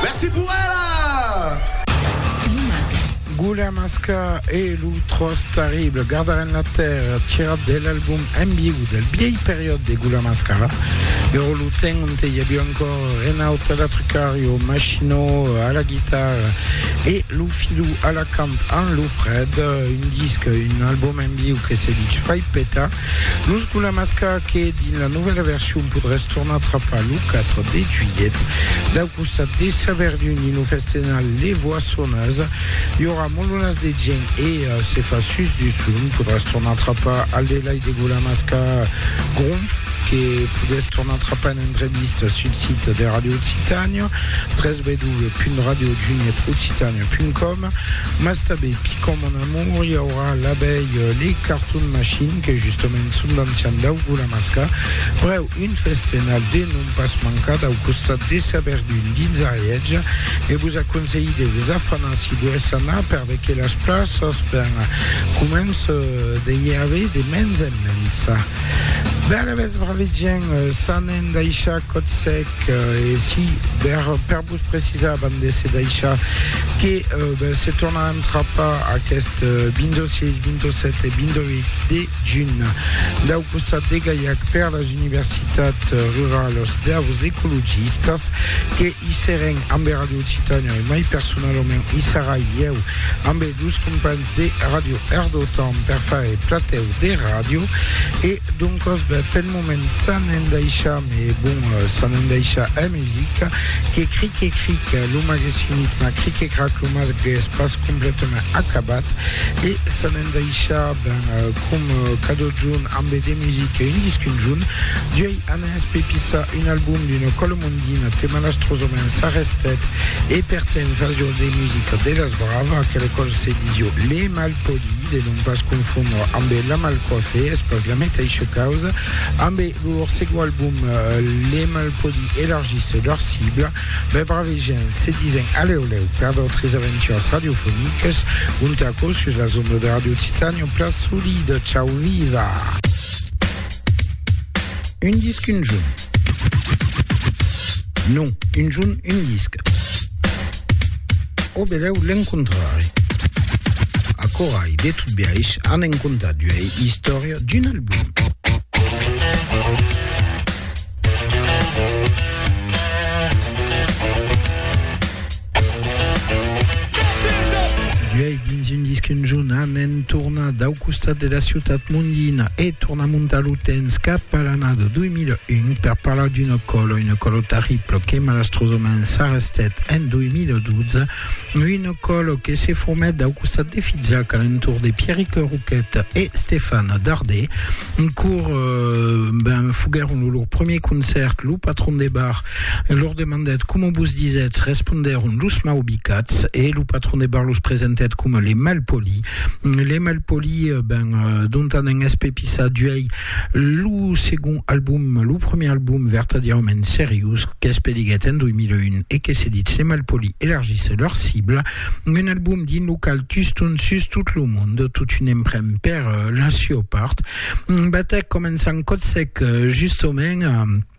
Merci pour ela! Gulamasca e lo tròç terrible, Gardar en la tèrra, tirat de l'album En viu del bièlh periòd de Gulamasca, ero lo temps onte i aviá encore Renaud a la trucària, o Machino a la guitarra e lo Filou a la cant amb lo Fred, un disc, un album en viu que se ditz Fai Peta. Lo Sculamasca que dins la novèla version podràs tornar trapar lo 4 de juilhet dau costat de Saverdun dins lo festenal Les Voissonneuses. I aurà molonas de gent e se fa sus du son. Podràs tornar trapar al delai de Gulamasca Gronf que podètz tornar trapar en entrevista sul sit de Radio Occitània www.radiojunietoccitania.com. Mas tanben picom mon amour i aurà l'abelh le carton machine que justament son d'ancian daugo la masca preu un festenal de non pas mancar dau costat de sa verdun dins Arièja e vos aconselhi de vos afanar si volètz anar perveque las plaças ben començ de i aver de mens en mens ben alavetz braves gents s'anen daishar còth sec e si per Vos precisavan de se daishar que se tornar a entrapar aqueste 26, 27 e 28 de junh dau costat de Gaiac per las universitats ruralas deus ecologistas que i seren ambe Radio Occitània e mai personalament i serai ieu ambe dus companhs de Radio Erdotàn per faire platèu de ràdio e doncas ben, pel Moment s'an endaisha me bon s'an endaisha è musica que cric e cric lo mas ges finit mas cric e crac lo mas ges pas completament acabat e s'an endaisha ben com cadot junt ambe de music un disc un junt duei anès pe pisa un album d'una cola mondina que malastrosament s'arrestet e per temps fasio de musica de las brava que lo còl se disio le mal Poli, de non pas confondre ambe La Mal Coiffe, es pas la meteisha causa. Ambe lor segon album, Les Malpolis elargissent lor cibla, mai bravejants, se disen alèu lèu per d'autres aventuras radiofonicas, ont aquò sus las ondas de Radio Titanium, Pla Solid, Ciau Viva! Un disc, un junt. Non, un jorn un disc. Au belèu l'encontrarè. Acorai, de tot biais, an en contat d'uei istòria d'un album. Uèi, dins un disc un jorn, Amen torna dau costat de la ciutat mondina e torna montar lo temps cap a l'anada 2001 per parlar d'una còla, una còla terribla que malastrosament s'arrestèt en 2012, una còla que se formèt dau costat de Fizac a l'entorn de Pierric Roquet e Stefan Dardé, cor ben foguèron lo lor premier concèrt, lo patron de bar E lor demandèt coma vos disètz, respondèron los mau bicats, e lo patron de bar los presentèt coma les mal polis. Les mal polis, ben, dontan en espepissar d'uèi lo segond album, lo premier album vertadièrament seriós qu'es pediguèt en 2001 e que se ditz Les mal polis elargissent leur cible, un album dins lo qual tuston sus tot lo mond, totun en pren per la siua part. Batèc començant còt sec, justement,